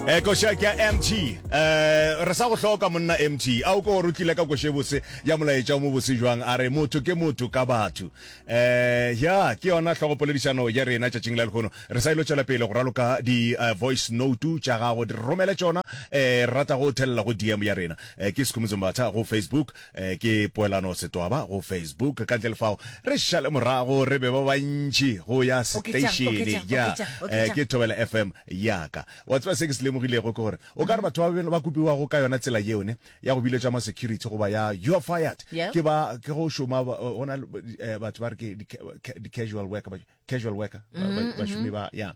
eh koša ke ya mt eh re sa go hloka monna mt a o ko gore o tlile ka koše bose ya molaetša o mo bose jwang a re motho ke motho ka batho eh ya ke yona hlogopoledišano ya rena tšatšing la lekgono re sa ilo tšwela pele go raloka di-voice eh, note tša gago di romele tšona um eh, re rata go thelela go dm ya rena eh, ke sekhumutso mbatha go facebook Eh, ke poelano setwaba go Facebook. Ka ntle le fao, re šale morago, re be ba bantši go ya Oketšang, seteišene. oketšang, Ya, oketšang, eh, oketšang. ke Thobela FM ya ka. Wa tseba se ke se lemogilego ke gore o ka re batho ba be- ba kopiwago ka yona tsela yeo ne ya go biletša ma security goba ya you are fired Yeah. ke ba ke go šoma ba- go na le, eh, batho ba re ke di- ca- di-casual worker ba- casual worker mm-hmm. bašomi ba ya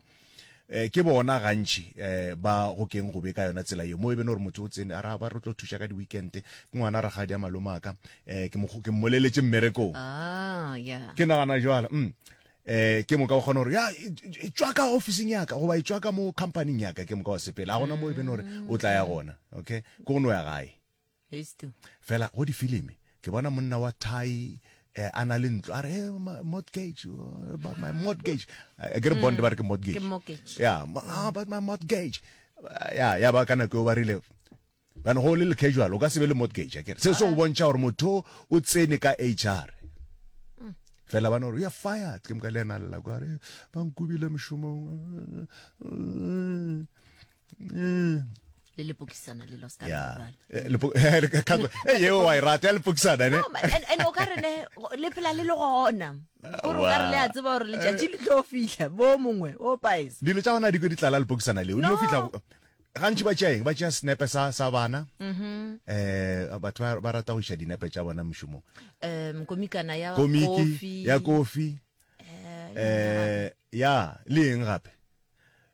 eh ke bona gantši eh ba go keng go be ka yona tsela yo mo e bene gore motho o tsene a ra ba re tlo thuša ka di-weekend ke ngwana ra gadi a malomaka eh ke ke mmoleletse mmerekong ah yeah ke nagana jwala mm eh ke moka o kgona gore ya tswa ka officing ya ka goba e tswa ka mo companyng ya ka ke moka wa sepele a gona mo e bene gore o tla ya gona okay ko go no ya gae Hist. Fela go difilimi ke bona monna wa thai eh, a na le ntlo a re eh, ma- mortgage uh, about my mortgage Eh, ke re bond ba re ke Ke mortgage mortgage. ya ma- ah, about my mortgage Ah, ya ya ba ka nako eo ba rile bana go le le casual o ka se be le mortgage akere se se go bontšha gore motho o tsene ka hr fela bana gore ya fired ke moka le ena lela kwa re ba nkubile mošomong mm. le lepokisana le lost yeah. Eh, eh, yeo wa e rata ya lepokisana ne and o ka re ne le phela le le gona gore o ka re le a tseba gore letšatši le tlo fihla bo mongwe o paes dilo tša gona di ko di tlala lepokisana leo dilo fihla gantši ba tšeaeng ba tšea senepe sa sa bana um batho ba rata go iša dinepe tša bona mošomong um komikana ya komiki ya kofi um ya le eng gape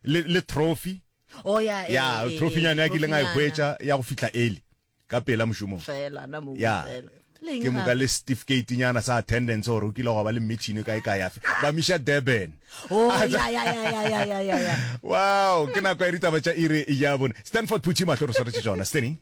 le, le trophy oh, ya, e, ya e, trophynyana ya ke ileng a e hwetša ya go fihla early ka pela mošomong fela na mo ya fela ke moka le certificate nyana sa attendance gore o kile go ba le mmetšhini kae ka yafe ba misha durban oh, wow ke nako ya ditaba tša ire ya bone stanford putši mahlo re swaretše tsona steny